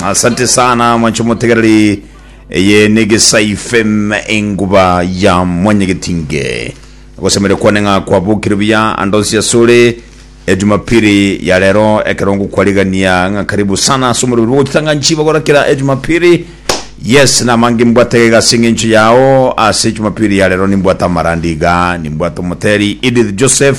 asante sana mwanche motegereri eye ni gisai fm enguba ya mwanyegetinge gosemere kwane ng'a kwabokire buya andonsi asore ejumapili ya rero ekerongo kwarigania ng'a karibu sana asomorobiri bogotitanga nchiba gorakera ejumapili yes namange mbwate egasi eng'encho yao ase ejumapili ya rero nimbwate amarandi iga nimbwate omoteri edith joseph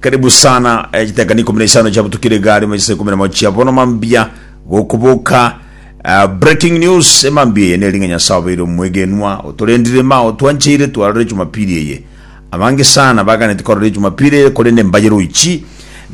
Karibu sana eh, chitakana ikumi na isano chia butukire igari mu chisa ikumi na mochia bono mambia gokubuka eh, breaking news emambia eye neringa nyasaye obeire omwegenwa otorendire ma otwancheire twarore jumapili eye abange sana baganeti korore jumapili eye korende mbaye roichi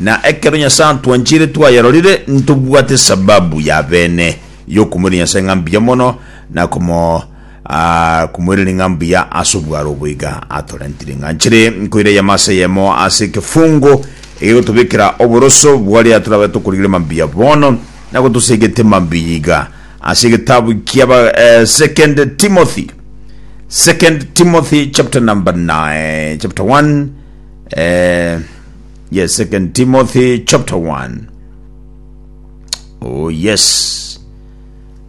na ekero nyasaye antwancheire twayarorire ntobwate sababu ya bene yokumwira nyasaye ng'a mbuya mono na komo Akumwirire ng'a mbuya ase obwaro obo iga atorentire ng'a nchire nkoira eyemo ase eyemo ase ekefungo egegotobekera oboroso bwaria torabe tokorigire mambia bono, na gotosegete mambia iga. Ase egetabu kia ba, eh, Second Timothy, Second Timothy chapter number 9, chapter 1, eh, yes, Second Timothy chapter 1. Oh yes.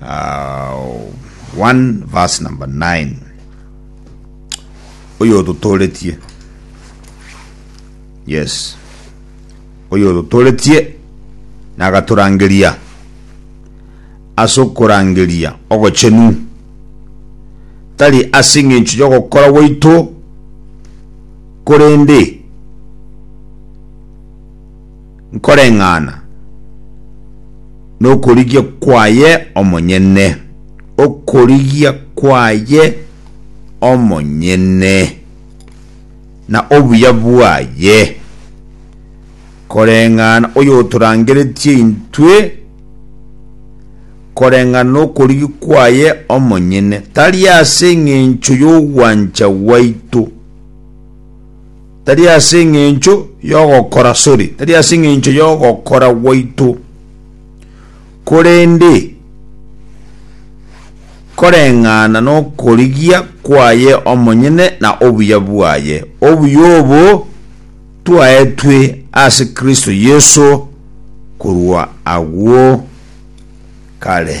Uh, 1 verse number 9 oyo ototoretie yes oyo ototoretie nagatorangeria ase okorangeria ogochenu tari ase eng'encho y'ogokora gwaito korende nkoreng'ana nokorigia kwaye omonyene, okorigia kwaye omonyene, na obuya bwaye, koreng'ana oyotorangeretie intwe, koreng'ana nokorigi kwaye omonyene, tari ase engencho yogwancha gwaito. Tari ase engencho y'ogokora, sorry, tari ase engencho y'ogokora gwaito, korende koreng'ana nokorigia kwaye omonyene na obuya bwaye. Obuya obo twaetwe ase Kristo Yeso korwa agwo kare.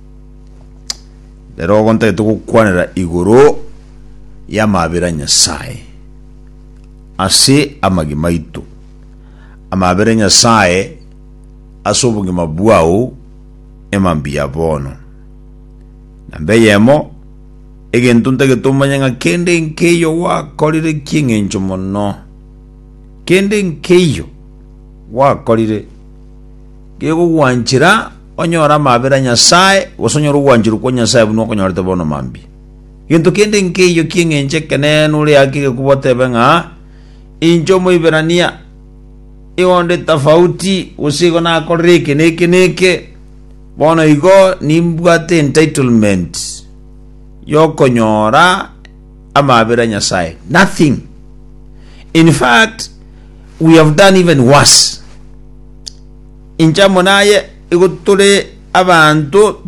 Rero ogo ntagete gokwanera igoro y'amabera a Nyasae ase amagima aito. Amabera a Nyasae ase obogima bwao emambia bono. Namba eyemo, egento ntagete omanye ng'a kende nkeiyo gwakorire kieng'encho mono. Kende nkeiyo gwakorire kegogwanchera Onyore amabera a Nyasae, gose onyore ogwancherwa kwa Nyasae buna okonyorete bono mambia. Gento kende nkeiyo ki'eng'encho ekeneene ore haki gekobua otebe ng'a, Inche Omoiberania, igo ndi tofauti, gose igo nakorire eke na eke na eke, bono igo nimbwate entitlement y'okonyora amabera a Nyasae. Nothing. In fact, we have done even worse. Inche amo naye igo tore abanto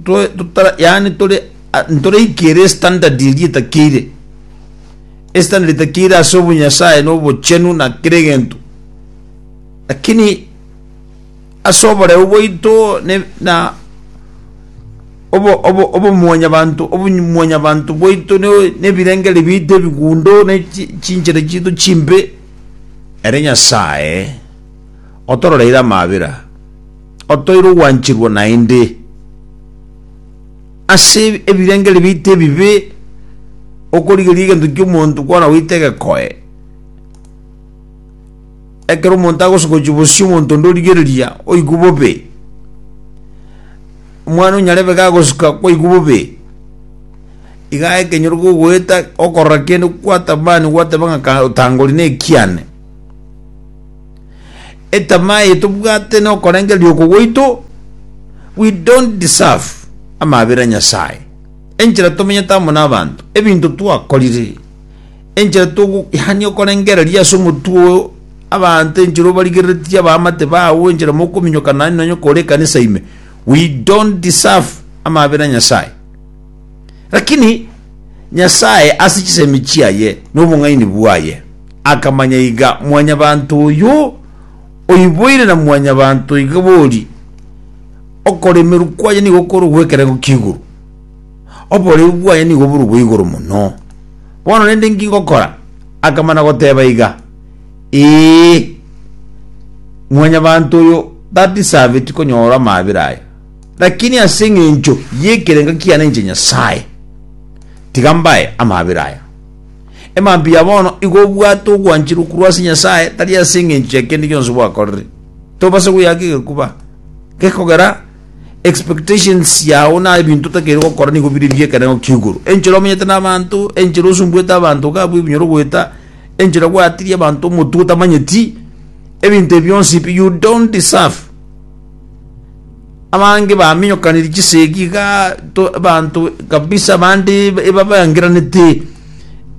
yaani tore ntoraikere estandard eria etakeire estandard etakeire ase obonyasaye na obochenu na kera egento lakini ase oboreu bwaito na obomwanyabanto obomwanyabanto bwaito na ebirengeri biaito ebigundo na chinchera chiaito chimbe ere nyasaye. otororeire amabera, otoire ogwancherwa naende ase ebirengererio biaito ebibe, okorigereria egento ki'omonto kwana goita egekoe. Ekero omonto agosogochia bosio omonto onde origereria, oigwe bobe. Omwana onyarebe iga agosuka kwaigwa bobe, iga ekenyoro kogoeta okorora kende kwatamani gwateba ng'a otangori nekiane. Etamaa eye tobwate nokorengereria oko gwaito, we don't deserve amabera a Nyasae, enchera tomenyete amo nabanto, ebinto twakorire, enchera togo yaani okorengereria ase omotwe oo abanto enchera obarigereretie abaamate bago enchera mokominyokana naende nonye kore ekanisa ime, we don't deserve amabera a Nyasae. Lakini Nyasae ase chisemi chiaye na obong'aini bwaye akamanya iga mwanyabanto oyo oiboire na mwanyabanto iga bori, okoremerwa kwaye nigo kore ogw'ekerengo ki'igoro, oboreu bwaye nigo bore obw'igoro mono. Bono rende inki ngokora? Akamana goteba iga, Ee, mwanyabanto oyo tadiserveti konyora amaabera aya. Lakini ase engencho y'ekerengo kiane inche Nyasae, tiga mbae amabera aya. Emambia ya bono igo obwate ogwancherwa korwa ase Nyasae, tari ase engencho ya kende gionsi gwakorire. Tobase goyaka egekuba gekogera expectations yao na ebinto otakeire gokora nigo bire bi'ekerengo ki'igoro. Enchera omenyete n'abanto, enchera osumbuete abanto iga abwo ebinyoro goeta, enchera gwatirie abanto omotwe otamanyeti, ebinto ebi bionsi pi you don't deserve. abange baminyokaniri chisegi iga to- abanto kabisa abande eba- ebabangeranete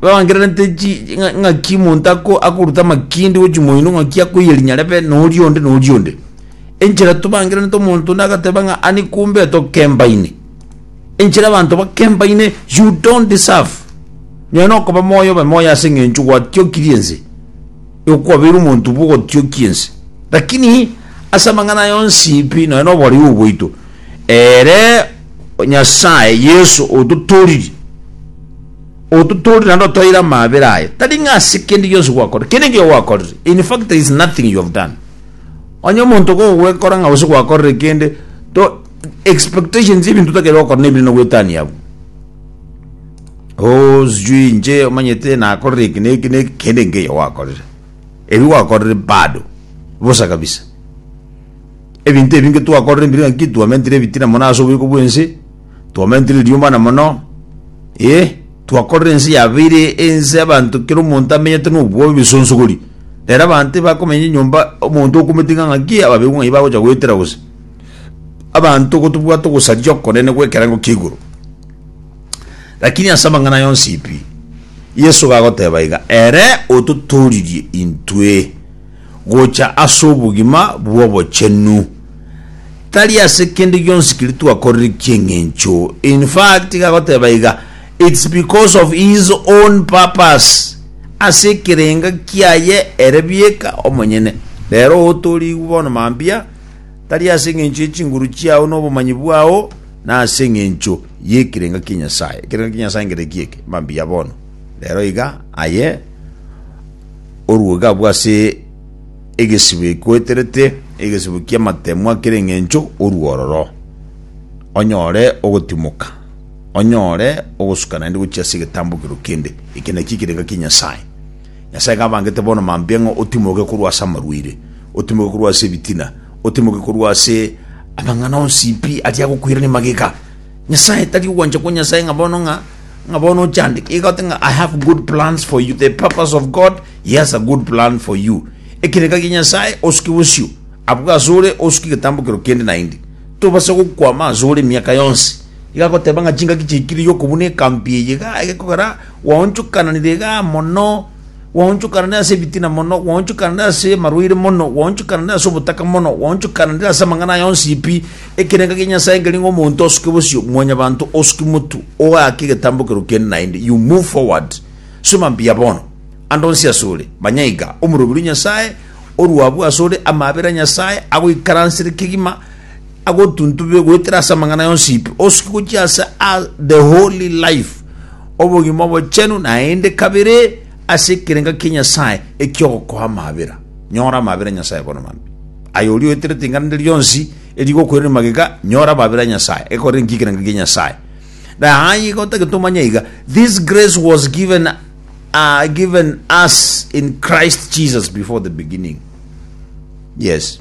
ebabangeranete chi- chi- ng'a- ng'aki omonto ako- akoruta amakindi gochia moino ng'aki akoiya rinyarebe na oria onde na oria onde enchera tobangeranete omonto onde agateba ng'a ani kumbe tokembaine enchera abanto bakembaine you don't deserve nonye na okoba moyo obe moyo ase eng'encho gwatiokirie ense. Okwabeire omonto bw'ogotiokia ense, lakini ase amang'ana aye onsi pi nonya noboreu bwaito, ere Nyasae Yeso ototooriri, ototooriri naende otoeire amaabera aye, tari ng'a ase kende gionsi gwakorire, kende ekio gwakorire, in fact there is nothing you have done. Onye omonto kogwekora ng'a gose gwakorire kende, to expectations y'ebinto otakeire gokora nebinene goetania abwo. Oo sijui inche omanyete nakorire eki na eki na eki, kende nkeiyo gwakorire. Ebi gwakorire bado, bosa kabisa. Ebinto ebi inge twakorire mbire ng'a nki twamentire ebitina mono ase oboiko bw'ense, twamentire eriomana mono, eh, twakorire ense yabeire ense abanto kera omonto amenyete na obwoba ebisonsogori. Ere abanto ebakomenya enyomba omonto okomotinga ng'a nki ababekwa ng'ai bagocha goetera gose. Abanto gotobwate ogosaria okonene gw'ekerengo kia igoro. Lakini ase amang'ana yonsi pi, Yeso iga agoteba iga, Ere ototooririe intwe gocha ase obogima bw'obochenu, tari ase kende gionsi keria twakorire ki'eng'encho. In fact, iga agoteba iga, It's because of his own purpose, ase ekerenga kiaye ere bieka omonyene. Rero otoorigwe bono mambia, tari ase engencho ye chinguru chiao na obomanyi bwao, na ase engencho y'ekirenga kia Nyasae. Ekirenga kia Nyasae nkereki eke? Mambia bono. Rero iga, aye orue iga abwo ase egesibo ekoeterete, egesibo ki'amatemwa kere engencho orue ororo, onyore ogotimoka, onyore ogosuka naende gochia ase egetambokero kende. Eke nakio ekirenga kia Nyasae. Nyasae ng'abangete bono mambia ng'a otimoke korwa ase amarwaire, otimoke korwa ase ebitina, otimoke korwa ase amang'ana onsi pi aria agokwirania magega. Nyasae tari ogwancha kwa Nyasae ng'a bono ng'a ng'a bono ochandeke iga ote ng'a I have good plans for you, the purpose of God, he has a good plan for you. Ekereka gia Nyasae osuke bosio, abwo ase ore osuke egetambokero kende naende. Tobasa gokwama ase ore emiaka yonsi. Iga agoteba ng'a chingaki chiaikire yokobuna ekambi eye iga egekogera gwaonchokananire igaa mono, gwaonchokananire ase ebitina mono, gwaonchokananire ase amarwaire mono, gwaonchokananire ase obotaka mono, gwaonchokananire ase amang'ana aya onsi pi, ekerengo kia Nyasae nkeri ng'a omonto osuke bosio, mwanyabanto osuke motu, ogaake egetambokero kende naende, you move forward. Soma mbuya bono. Ande onsi asore, manya iga, omoroberi o Nyasae, orwabu asore, amaabera Nyasae, agoikaransere kegima, agotuntube goetera ase amang'ana yonsi pi, osuke gochia ase a the holy life, obogima obochenu, naende kabere ase ekerenga kia Nyasae ekiogokoa amabera. Nyora amabera Nyasae bono mambia. Aye oria oeterete ring'ana rinde rionsi erigokoirania magega, nyora amabera a Nyasae, ekorere nki ekerenga kia Nyasae. Na aye iga otagete omanye iga, this grace was given, uh, given us in Christ Jesus before the beginning. Yes.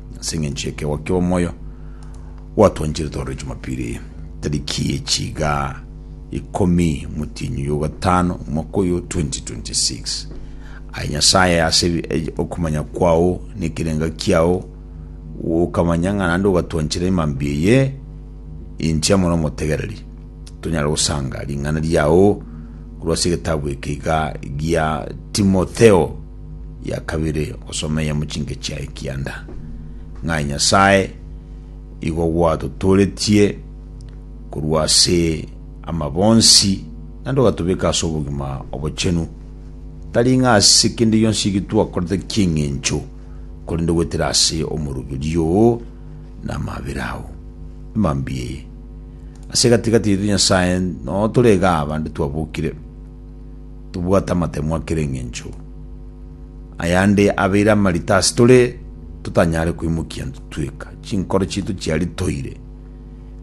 Ase engencho y'ekeegwa ki'omoyo gwatwancherete ororo Jumapili eye, tariki ye chiga ikomi motienyi y'ogatano omwaka oyo 2026. Aye Nyasaye, ase ebi- e- okomanya kwao na ekerenga kiao okamanya ng'a naende ogatwanchera emambia eye enchia mono omotegereri. Tonyare gosanga ring'ana riao korwa ase egetabu eke iga gia Timotheo ya kabere ogosomeia mu chingechi yaye kianda, ng'a Nyasae igo gwatotooretie korwa ase amabo onsi, naende ogatobeka ase obogima obochenu, tari ng'a ase kende gionsi eki twakorete ki'engencho, korende goetera ase omoroberio oo na amabera ao. Emambia eye. Ase egati-gati yaito Nyasae, notoregaabande twabokire. Tobwate amatemwa kera engencho. Ayande abeire amarita ase tore totanyare koimokia ntitweka. Chinkoro chiaito chiari toire.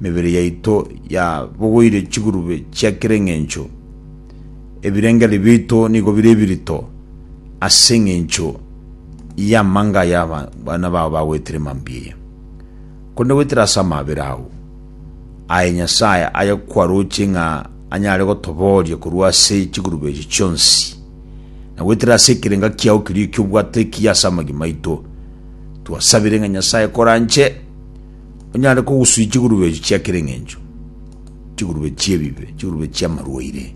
Emebere yaito ya bogoire chigurube chia kera engencho. Ebirengeri biaito nigo bire ebirito ase engencho y'amanga aya abana bao bagoetire mambia eye. Korende goetera ase amabera ao, aye Nyasae aye kwaroche ng'a anyare gotobooria korwa ase chigurube echi chionsi, na goetera ase ekerenga kiao keria eki'obwato ekiya ase amagima aito. Twasabire ng'a Nyasae koranche onyare kogusuia chigurube echi chia kera eng'encho, chigurube chi'ebibe, chigurube chi'amarwaire,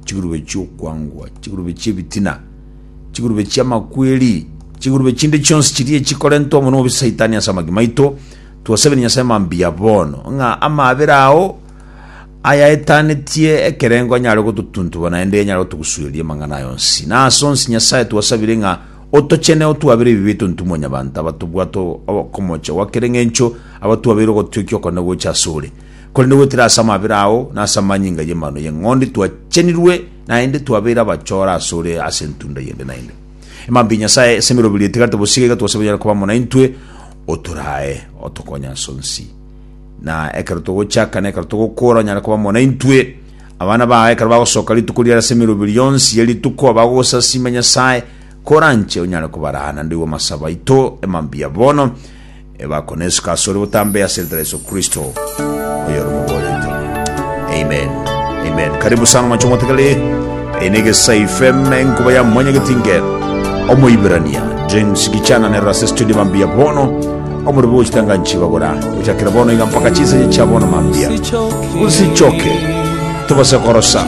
chigurube chi'okwangwa, chigurube chi'ebitina, chigurube chi'amakweri, chigurube chinde chionsi chiria echikorentwa mono obobe Saitani ase amagima aito, Twasabire Nyasae mambia bono, ng'a amaabera ao ayaetanetie ekerengo anyare gototuntuba naende anyare gotogusueria amang'ana aya onsi. Na ase onsi Nyasae twasabire ng'a otochene otwabere ebibe etontu Mwanyabanto abatobwate okomocha gwa kera eng'encho abatwabeire ogotiokia okone gocha asore. Korende goetera ase amaabera ao na ase amanyinga y'Amang'ana y'Eng'ondi twachenirwe naende twabeire abachore asore ase entunda yende naende. Emambia ya Nyasae ase emeroberio etigarete bosio iga twasabire onyare koba amo naintwe, Otorae otokonye ase onsi, na ekero togochaka na ekero togokora onyare koba amo naintwe. Abana bao ekero bagosoka rituko riare ase emeroberio yonsi ye rituko, bagogosasiima Nyasae, koranche onyare kobaraa naende igo amasabo aito, emambia bono, ebakonesuka ase ore botambe ase eritwe ria Yeso Kristo, oyore omoboreito. Amen. Amen. Karibu sana mwache motegere. Eye negesaife enkuba ya mwanyageti nge Omoiberania James Gichana nerora ase studio mambia bono omorobi gochitanga nchibabura gochakera bono iga mpaka chinsache chia bono mambia usichoke tobase korosa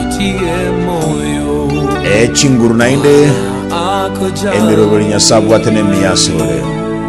echinguru naende emiroberi nyasae abwate nemiyasorore